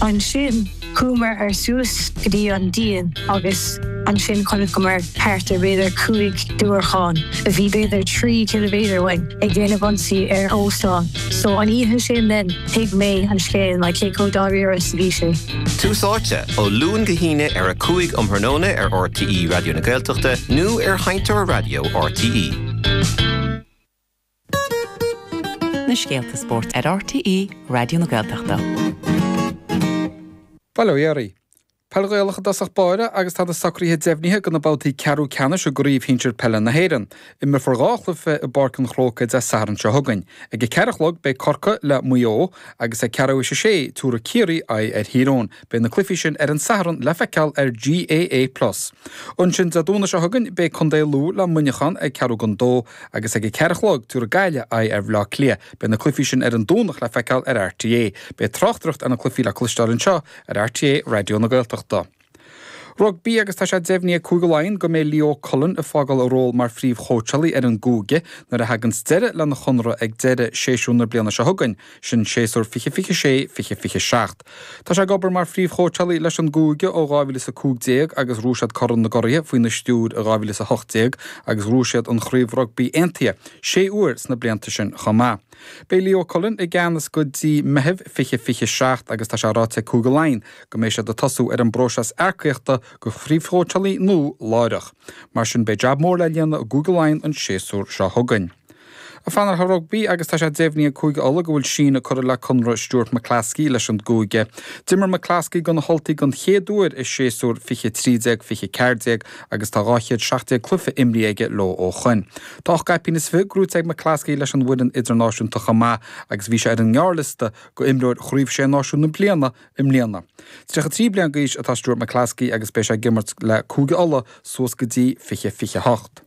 Ansin chuamar suas go dtí an díon agus ansin chonaiceamar thart ar b'fhéidir cúig diúracháin a bhí b'fhéidir trí ciliméadar uainn ag déanamh ionsaí ar óstán. So an oíche sin then thuig mé an scéal like cé chomh dáiríre is a bhí sé. Tús Áite, ó Luan go hAoine ar a 5 um thráthnóna ar rte Raidió na Gaeltachta nó ar sheinnteoir raidió rte. Na scéalta spóirt ar RTÉ Raidió na Gaeltachta. Bail ó Dhia oraibh. Peil Ghaelach i dtosach báire agus tá na socruithe deimhnithe go na babhtaí ceathrú ceannais i gCraobh Shinsir Peile na hÉireann. Imreofar dhá chluiche i bPáirc an Chrócaigh Dé Sathairn seo chugainn. Ag a ceathair a chlog beidh Corcaigh le Maigh Eo agus ag ceathrú théis a sé tabharfaidh Ciarraí aghaidh ar Thír Eoghain. Beidh na cluichí sin ar an Satharn le feiceáil ar GAA Plus. Ansin Dé Domhnaigh seo chugainn beidh Contae Lú le Muineachán ag ceathrú go dó agus ag a ceathair a chlog tabharfaidh Gaillimh aghaidh ar Bhleá Cliath. Beidh na cluichí sin ar an Domhnach le feiceáil ar RTÉ. Beidh tráchtaireacht ar na cluichí le cloisteáil anseo ar RTÉ Raidió na Gaeltachta. Rugbaí agus tá sé deimhnithe ag Cúige Laighean go mbeidh Leo Cullen ag fágáil a ról mar phríomhchóitseálaí ar an gcúige nuair a thaganns deireadh lena chonradh ag deireadh shéasúr na bliana seo chugainn, sin séasúr fiche fiche sé, fiche fiche seacht. Tá sé ag obair mar phríomhchóitseálaí leis an gcúige ó 2015 agus ghnóthaigh siad Corn na gCuradh faoina stiúir in 2018 agus ghnóthaigh siad an Chraobh Rugbaí Aontaithe sé uair sna blianta sin chomh maith. Beidh Leo Cullen i gceannas go dtí Meitheamh 2027 agus tá sé ráite ag Cúige Laighean go mbeidh siad ag tosú ar an bpróiseas earcaíochta go príomhchóitseálaí nua láithreach. Mar sin beidh jab mór le líonadh i gCúige Laighean an séasúr seo chugainn. Ag fanacht ar rugbaí agus tá sé deimhnithe ag Cúige Uladh go bhfuil síneadh curtha le conradh Stuart McCloskey leis an gcúige. D'imir McCloskey do na hUltaigh don chéad uair i séasúr fiche a trí déag fiche a ceathair déag agus tá dhá chéad seacht déag cluiche imrithe aige leo ó shoin. Tá ocht gcaipín is fiche gnóthaithe ag McCloskey leis an bhfoireann idirnáisiúnta chomh maith agus bhí sé ar an ngearrliosta go imreoir Chraobh Sé Náisiún na Bliana i mbliana. Tríocha trí bliain d'aois atá Stuart McCloskey agus beidh sé ag imirt le Cúige Uladh suas go dtí fiche fiche a hocht.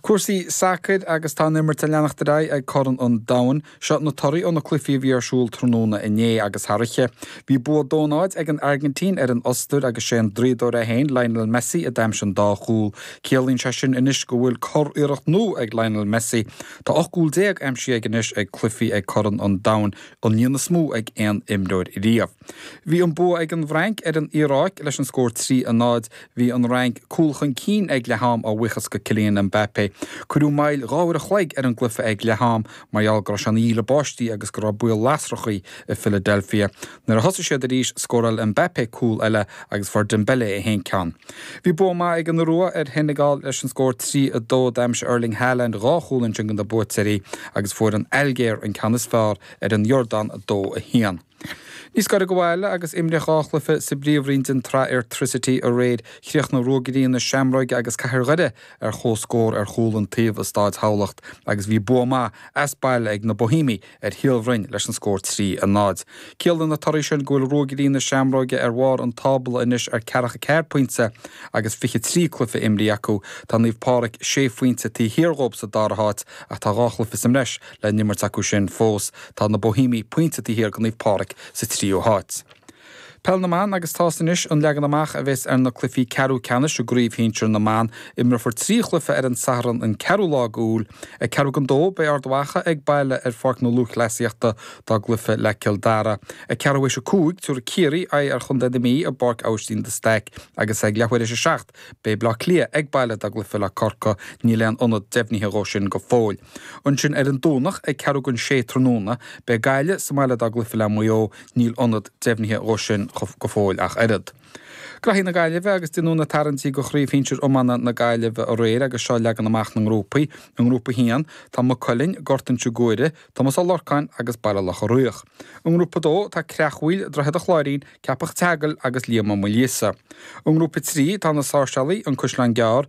Cúrsaí sacair agus tá an imirt ag leanacht ar aghaidh ag Corn an Domhain. Seo na torthaí ó na cluichí a bhí ar siúl tráthnóna inné agus thar oíche. Bhí bua dó náid ag an Airgintín ar an Ostair agus sé an draíodóirín é féin Lionel Messi a d'aimsigh an dá chúl. Ciallaíonn sé sin anois go bhfuil curiarracht nua ag Lionel Messi. Tá 18 gcúl aimsithe aige anois ag cluichí ag Corn an Domhain, an líon is mó ag aon imreoir riamh. Bhí an bua ag an bhFrainc ar an Iaráic leis an scór 3 a 0. Bhí an Fhrainc cúl chun cinn ag leath am a bhuíochas go Kylian Mbappé. Cuireadh moill dhá uair a chloig ar an gcluiche ag leath am mar gheall go raibh sé ina dhíle báistí agus go raibh baol lasrachaí i Philadelphia. Nuair a thosaigh siad arís scóráil Mbappé cúl eile agus fuair Dembele aon cheann. Bhí bua maith ag an Iorua ar Shenegal leis an scór 3 2. D'aimsigh Erling Haaland dhá chúl ansin do na buaiteoirí agus fuair an Ailgéir an ceann is fearr ar an Iordáin 2 1. Níos gaire go bhaile agus imríodh dhá chluiche sa bpríomhroinn den tsraith Airtricity aréir, chríochnaigh Ruagairí na Seamróige agus Cathair Dhoire ar chomhscór ar chúl an taobh i Stáid Thamhlacht agus bhí bua maith as baile ag na Bohímigh ar Shíol Bhroin leis an scór 3, 0. Ciallaíonn na torthaí sin go bhfuil Ruagairí na Seamróige ar bharr an tábla anois ar ceathracha ceathair pointe agus fiche trí cluiche imrithe acu. Tá Naomh Páraic sé phointe taobh thiar dhóib sa dara háit ach tá dhá chluiche sa mbreis le n-imirt acu sin fós tá na Bohímigh pointe taobh thiar de Naomh Pádraig sa tríú háit. Peil na mBan agus tá fhios anois an leagan amach a bheas ar na cluichí ceathrú ceannais i gCraobh Shinsear na mBan. Imreofar trí chluiche ar an Satharn an 4ú lá go Iúil. Ag ceathrú gon dó beidh Ard Mhacha ag baile ar Pháirc na Lúthchleasaíochta dá gcluiche le Cill Dara. Ag ceathrú théis a cúig tabharfaidh Ciarraí aghaidh ar Chontae na Mí i bPáirc Abhaistín de Staic agus ag leath uair théis a seacht beidh Bleá Cliath ag baile dá gcluiche le Corca. Níl aon ionad deimhnithe dhó sin go fóill. Ansin ar an Domhnach ag ceathrú gon sé tráthnóna, beidh Gaille sa mbaile dá gcluife le Maigh Eo, níl ionad deimhnithe dhó sin go fóill ach oiread. Graithí na Gaillimhe agus déanadh na tarraingtí go Chraobh Shinsir Iomána na Gaillimhe aréir agus seo leagan amach na ngrúpaí. I nGrúpa 1, tá Maigh Cuilinn, Gort Inse Guaire, Tomás Ó Lorcáin agus Baile Locha Riach. I nGrúpa 2, tá Creachmhaoil, Droichead an Chláirín, Ceapach an tSeagail agus Liam Ó Maoilíosa. I nGrúpa 3, tá na Sáirséalaigh, An Caisleán Gearr,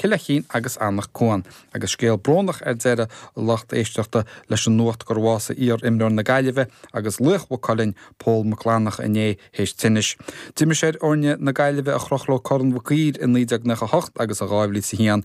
Cill Fheichín agus Anach Cuan. Agus scéal brónach ar deireadh a lucht éisteachta leis an nuacht gur bhásaigh iar-imreoir na Gaillimhe agus laoch Mhaigh Cuilinn, Pól Mac Fhlannacha inné théis tinnis. D'imir sé ar fhoirne na Gaillimhe a chroch leo Corn Mhic Uidhir i 1998 agus in 2001.